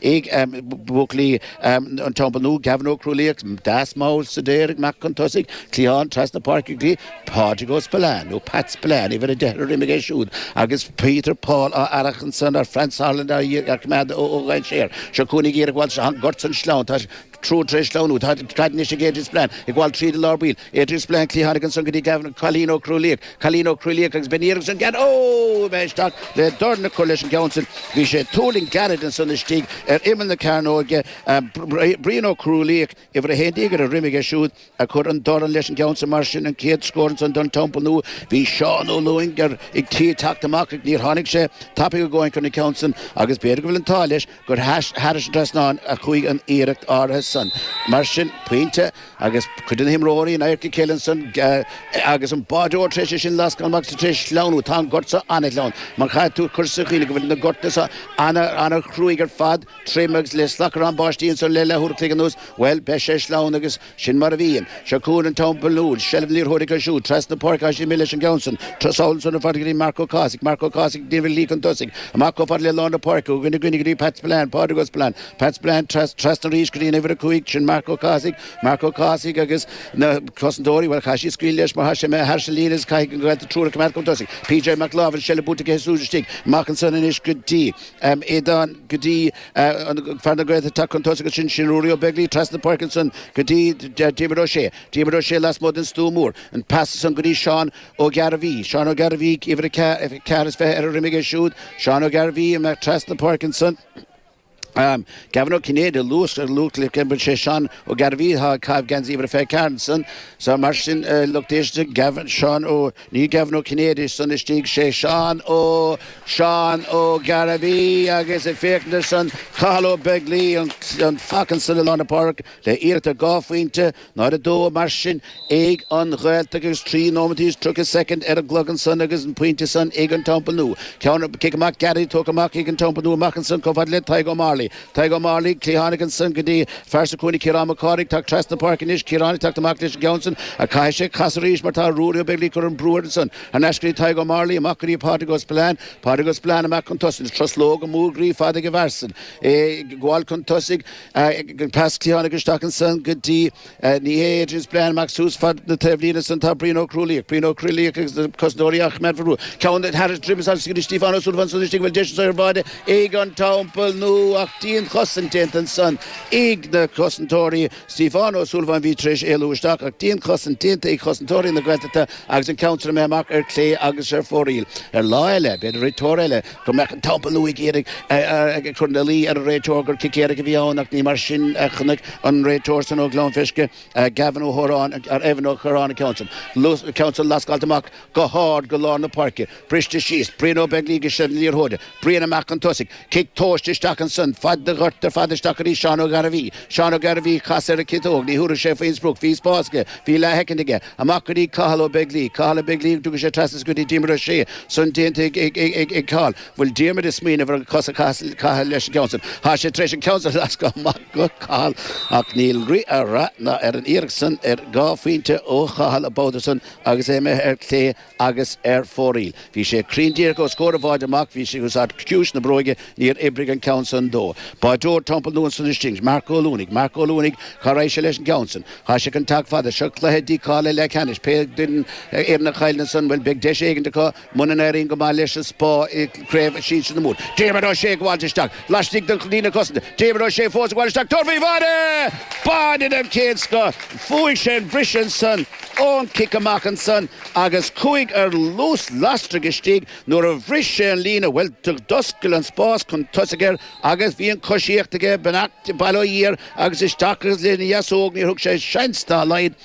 ag buachaillí an Teampaill Nua, Gavin Ó Crualaoich, deas mall staidéartha amach chun tosaigh, cliathánach trasna páirce go dtí, Pádraig Ó Spealáin, nó Pat Spillane, uimhir a deich ar a dhroim aige é siúd, agus Peter Paul á fhearacht ansan ar Franz Sauerland á choimeád ó dhainséar, seo chugainn é ag iarraidh a ghabháil, seo an gort san sleamhain, tá Triúr tar éis sleamhnú, caid anois ag Adie Spillane, ag gabháil tríd i lár baill, Adie Spillane, cliathánach ansan go dtí Gavin, Colin Ó Cruadhlaoich, Colin Ó Cruadhlaoich agus beidh an iarracht san gairid, óóóó, bheith isteach le dorn a chur leis an gceann sin, bhí sé ag tuirlingt gairid ansan istigh ar imeall na cearnóige, Brian Ó Cruadhlaoich, uimhir a haon déag ar a dhroim aige siúd, Ag cur an dorn leis an gceann sa mar sin an chéad scór ansan don Teampall Nua. Bhí Seán Ó Lúing ar tí teacht amach ach níor tháinig sé tapaidh a dhóthain i gcóir na ceann san agus b'fhéidir go bhfuil an t-ádh leis gur thairis an trasnán a chuaigh an iarracht áirithe san. Mar sin pointe agus cuid de na himreoirí in adharca a chéile ansan agus an báireoir tar éis sin lascáil amach tar éis sleamhnú. Tá an gort so an-shleamhain mar chaithfidh tú cur sa chuimhne go bhfuil na gortanna so an-chruaidh ar fad. Tirim agus le slacardhán báistí anso le leathuair a chloig anuas, bhuel, beidh sé sleamhain agus sin mar a bhíonn. Seo chugainn an Teampall Nua, seilbh na liathróide acu siúd, trasna páirce há sé mile leis an gceann san, trasna ansan ar fad go dtí Marc Ó Cathasaigh, Marc Ó Cathasaigh ag déanamh a shlí chun tosaigh, amach chomh fada le lár na páirce, ó dhuine go duine go dtí Pat Spillane, Pádraig Ó Spealáin, Pat Spillane, tras, trasna arís go dtí an uimhir a cúig, sin Marc Ó Cathasaigh, Marc Ó Cathasaigh agus na cosantóirí, bhuel, chaith siad scaoileadh leis mar chaith sé mé thairis an líne agus caithfidh an Ghaeltacht triúr a choimeád chun tosaigh. PJ Mac Láimh, an seilbh buaite aige siúd istigh, amach ansan anois go dtí. Aodán, go dtí fear na Gaeltachta ag teacht chun tosaigh, agus sin sin Ruairí Ó Beaglaoich trasna páirce ansan go dtí Diarmuid Ó Sé, Diarmuid Ó Sé lasmuigh den Stua Mór, an pas san go dtí Seán Ó Gairbhí, Seán Ó Gairbhí uimhir a ceath a ceathair is fiche ar a dhroim aige siúd, Seán Ó Gairbhí ag imeacht trasna páirce ansan. Gavin Ó Cinnéide a luas ach sé Seán Ó Gairbhí atá ag caitheamh geansaí uimhir a fiche a ceathair ansan, so mar sin lucht éisteachta Gavin, Seán Ó. Ní Gavin Ó Cinnéide ansan istigh, sé Seán Ó, Seán Ó Gairbhí, agus ag féachaint ansan, Cathal Ó Beaglaoi, an fathach ansan i lár na páirce le iarracht ar dhá phointe, náid a dó, mar sin, ag an Ghaeltacht agus trí nóiméad is tríocha soicind ar an gclog ansan agus an pointe san ag an Teampall Nua. Ceann, cic amach gairid, tógtha amach ag an Teampall Nua amach ansan chomh fada le Tadhg Ó Morley. Tadhg Ó Morley cliathánach ansan go dtí fear sa chúinne Ciarán Mac Cárthaigh ag teacht trasna páirce anois Ciarán ag teacht amach leis an gceann san ach caithfidh sé casadh arís mar tá Ruairí Ó Beaglaoich ag cur an brú air ansan thar n-ais go dtí Tadhg Ó Morley amach go dtí Pádraig Ó Spillane Pádraig Ó Spillane amach chun tosaigh truslóga móra groí fada ag an bhfear san é ag gabháil chun tosaigh an pas cliathánach isteach ansan go dtí Ní hé Adrian Spillane amach suas fad na taobhlíne ansan tá Brian Ó Crualaoich, Brian Ó Crualaoich agus na cosantóirí á choimeád faoi bhrú. Ceann thar a dhroim isteach go dtí Stíofán Ó Súilleabháin ansan istigh bhuel deis ar bháide ag an Teampall Nua ach dianchosaint déanta ansan ag na cosantóirí Stíofán Ó Súilleabháin bhí tar éis éalú isteach ach dianchosaint déanta ag chosantóirí na Gaeltachta agus an ceann seo imithe amach ar clé agus ar fóraoil. Ar lá eile, b'fhéidir réiteoir eile, go mbeadh an Teampall Nua ag iarraidh a chur ina luí ar an réiteoir gur cic éirice a bhí ann ach ní mar sin a chonaic an réiteoir san ó Ghleann Frisce, Gavin Ó hOdhráin, Evan Ó hOdhráin an ceann san lascáilte amach go hard go lár na páirce, briste síos, Brian Ó Beaglaoich i seilbh na liathróide, Brian amach chun tosaigh, cic tomhaiste isteach ansan, fad an ghoirt ar fad isteach go dtí Seán Ó Gairbhí, Seán Ó Gairbhí, chas ar an gciotóg, ní thabharfadh sé faoin sprioc, bhí spás aige, bhí leathshoicind aige. Amach go dtí Cathal Ó Beaglaoi. Cathal Ó Beaglaoi an dtabharfaidh sé trasna is go dtí Diarmaid Ó Sé. San déanta ag Cathal. Bhfuil Diarmaid ag smaoineamh ar cos a chaitheamh leis an gceann san. Tá sé tar éis an ceann san a lascadh amach go Cathal ach níl rith ar rath ná ar an iarracht san ar dhá phointe ó Chathal an babhta san agus é imithe ar clé agus ar fóraoil. Bhí sé cruinn díreach os comhair an bháide amach, bhí sé ag úsáid ciumhais na bróige, níor oibrigh an ceann san dó. Báideoir Teampall Nua ansan istigh, Marc Ó Luanaigh, Marc Ó Luanaigh, Cá raghaidh sé leis an gceann san? Tá sé chun teacht fada, seo cluiche dícháilithe leathcheannais, pé duine foireann a chailleann san, bhuel beidh deis éigin acu muna n-éiríonn go maith leis an Spá i gcraobh sinsir na Mumhan. Diarmaid Ó Sé ag gabháilt isteach, laistigh den líne cosanta. Diarmaid Ó Sé fós ag gabháil isteach, tabhairt faoi bháide! Báide den chéad scoth! Bhuaigh sé an bhris ansan ón chic amach ansan agus chuaigh ar luas lasrach istigh nuair a bhris sé an líne, bhuel, d'oscail an spás chun tosaigh air agus bhí an choisíocht aige, beannacht Dé, bail ó Dhia air agus isteach agus lena dheasóg níor thug sé seans dá laghad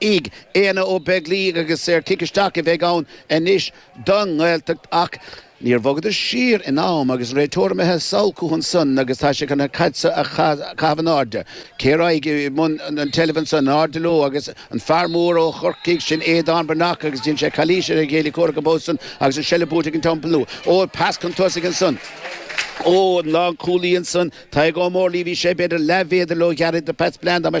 Aodhna Ó Beaglaoich agus saor cic isteach a bheidh ann anois don nGaeltacht ach níor bhogadar siar in am agus an réiteoir imithe sall chucu san agus tá sé chun an chaid seo a chaitheamh in airde. Cé a raghaidh i mbun an tseilbh anso in airde leo agus an fear mór ó Chorcaigh, sin Aodán Breathnach agus dhein sé calaois ar a chéile comhraic an babhta san agus an seilbh buaite ag an Teampall Nua. Óh, pas chun tosaigh ansan ón lánchúlaí ansan, Tadhg Ó Mórlaí, bhí sé b'fhéidir leathmhéadar róghearr do Phat Spillane dá mba